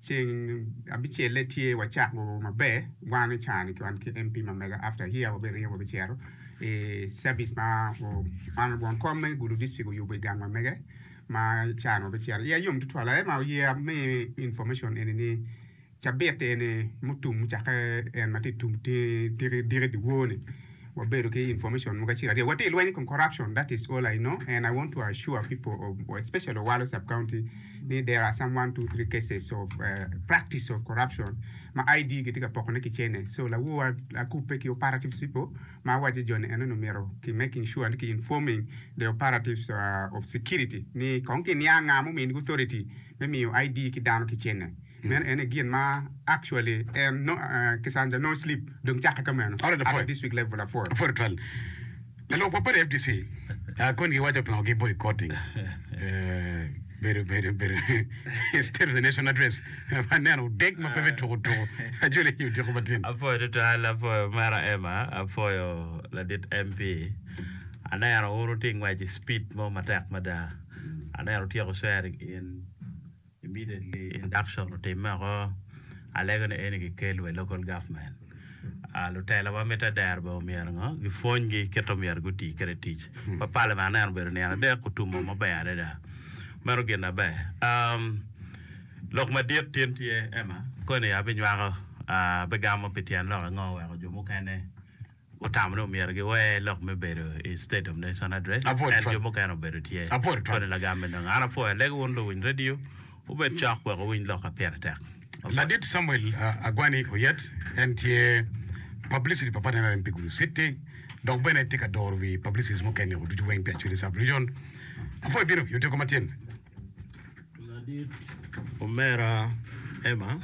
Ceng abicelle tye wacako maber wan i cani wan ki MP ma mega after here wa bene wa bicito i service ma man won kom me gulu district oyubo i gang wa mege ma i cani wa bicito iya yom tutwal aye ma oye ami information eni ni cabit eni mutum mucake en ma tye tiki diki dyewor ni wabedo ki information mogo acel aryo watye ilweny ikom corruption that is all I know and I want to assure people of especially Owalo sub county ni there are some one two three cases of uh, practice of corruption ma ID gitye ka pokone ki cene so lawowa akubbe ki operatives people ma awaco joni eno ni myero ki making sure ni ki informing the operatives uh, of security ni kong ki niang nga muminigi authority me miyo ID ki dano ki cene Meno ene gin ma actually en no Kisanja no slip dong cakke ka meno at the district level apwod. Apwod twal. Lalwok wa padi fdc kony gi waco pingo gi boycotting bedo bedo bedo state of the nation address ma neno odeg ma pe me tuku tuku ajoli nyo odiko ma tin. Apwoyo tutwal apwoyo mera Emma apwoyo ladit MP aneno un wuti ngwec i speed mo matek mada aneno wutyeko sharing in. Immediately induction otimme oko, alego ni eni kikel wa i local government. Lutela wa mitte adera bene omyero ngo? Gipwony gi kit omyero guti kwede tic. Pa parliament aneno obedo nino adek otumo maber adada. Meno gin maber. Um, lok madit tin tye Emma, koni abinywako, abigamo pi tyen lok ango weko jo mukene Gutamone omyero giwer lok me bedo i State of Nation Address, ento jo mukene obedo tye. Koni lagam me nonge? An apwoyo alegi wun luwiny radio wubed cok wek wuwiny lok ma pire tek. Ladit Samuel Agwani Oyet, en tye Publicity pa Pati nrm pi Gulu City dok bene tye ka doro wi Publicities mukene-gu ducu weng pi Acholi Sub-Region. Apwoyo bino i otyego matyen. Ladit omera Emma,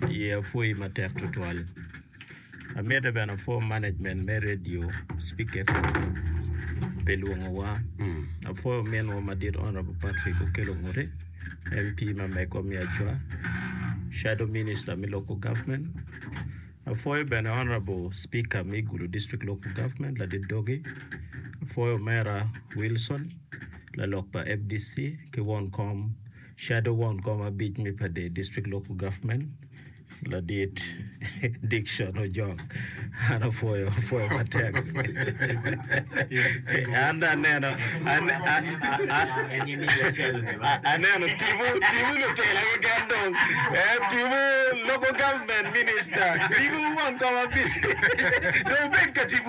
aye apwoyi matek tutwal. Amite bene apwo management me Radio Speak FM pi lwongowa. Apwoyo minwa madit Honourable Patrick Okello Nguti, MP ma Mego me Acwa, Shadow Minister me Local Government. Apwoyo bene Honourable Speaker me Gulu District Local Government Ladit Doge. Apwoyo omera Wilson. Lalok pa fdc ki won kom, Shadow Won kom abic me Padee District Local Government, Ladit Dickson Ojok. An apwoyo, apwoyo matek. An dong aneno, ane- a- a- a- aneno timu, timu lutela keken dong. Eh, timu Local Government Minister, timu won kom abic. Dong wubed ka timu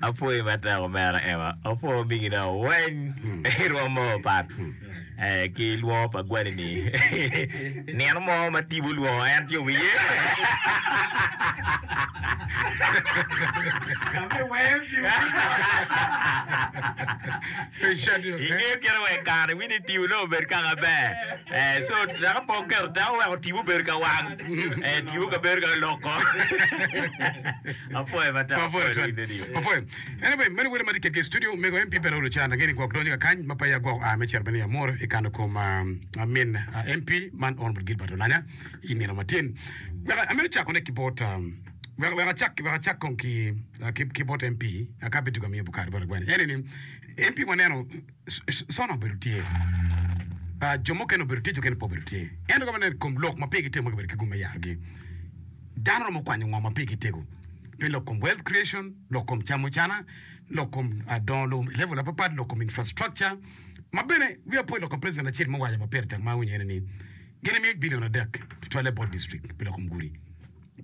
Apwoyi matek omera Emma, apwo omigi dong weng irwom mo opat ki lwongo pa gwali ni nino mo ma Tibu olwongo en ci owiye. Ingeyo kite wek kare wini Tibu nongo obed kaka ber so dok pe oketo teko weko Tibu obedo ka wang Tibu ka bedo ka loko. Apwoyo mada. Apwoyo twal. Apwoyo. Anyway, meno wele ma tye ketgi i studio. Mego MP Peter Olucan ange ni gwok donyo ka kany ma pa ya gwok a me cito bene i Amuru i kano kom ah, min ah, MP man Honorable Gilbert Olanya i nino ma tin. Wek amito cakone ki bot ah, wek wek acak wek acak kong ki ah, ki ki bot MP Akabe Duga Miyo Bukar Baragwani. En ni MP waneno Sona obedo tye, jo mukene obedo tye, jo mukene pe obedo tye. Ento ka waneno i kom lok ma pigi tego ma gibedo ki gum me yarogi, dano romo kwanyo ngo ma pigi tego pi lok kom wealth creation, lok kom camucana, lok kom dongo lobo i level mapatpat, lok kom infrastructure. Ma bene wiya pe oloko president acel mo owaco ma pire tek ma awinyo ene ni gin gimiyo billion adek tutwalle bot district pi lok kom gudi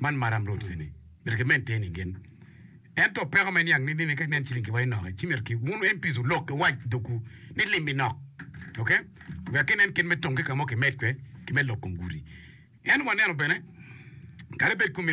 man Maram roads eni myero ki maintain gin. Ento peko me niang ni nini ka inen ciling kiwa inoki ci myero ki wun MPs wulok ki wac dogwu ni lim inok ok wek ki nen kit me tongi kamo ki med kwe ki me lok kom gudi en waneno bene kadi bed kumeno.